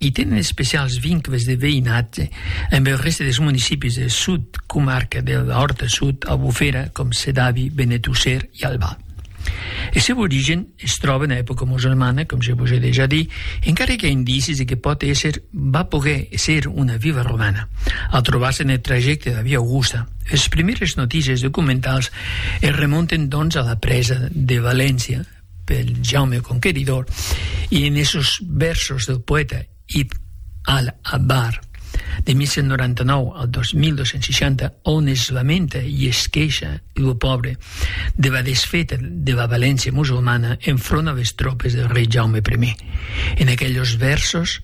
I tenen especials vincles de veïnatge amb el reste dels municipis del sud comarca de l'Òrta Sud, Albufera, com Sedaví, Benetússer i Albà. El seu origen es tròba en època musulmana, com je vos ai dejà dit, encara que i a indicis de que pòt èsser va poguer ser una vila romana, al trobar-se en el trajecte de la via Augusta. Es primièrs notícies documentals es remonten, doncs, a la presa de València, pel Jaume Conqueridor e en esos vèrsos del poèta Ibn al-Abbar de 1199 al 2260 on es lamenta e es queixa lo pòbre de la desfeta de la valéncia musulmana en front a les tropes del rei Jaume I. En aqueles vèrsos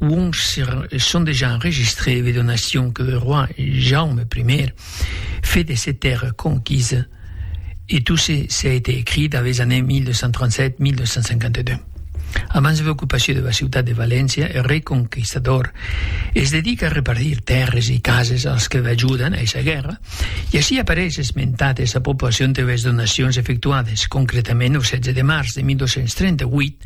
Uòns son dejà enregistrés de donacion que roi Jaume Primièr fe de se tèrra conquisa e tot se s'a été écrit dab es années 1237-1252. Abans de l'ocupacion de la ciutat de Valéncia, er rei conquistador es dedica a repartir tèrres e cases als que l'ajudan a esa guèrra, e ací apareis esmentat esa proporcion de les donacions efectuades, concretament au 16 de març de 1238,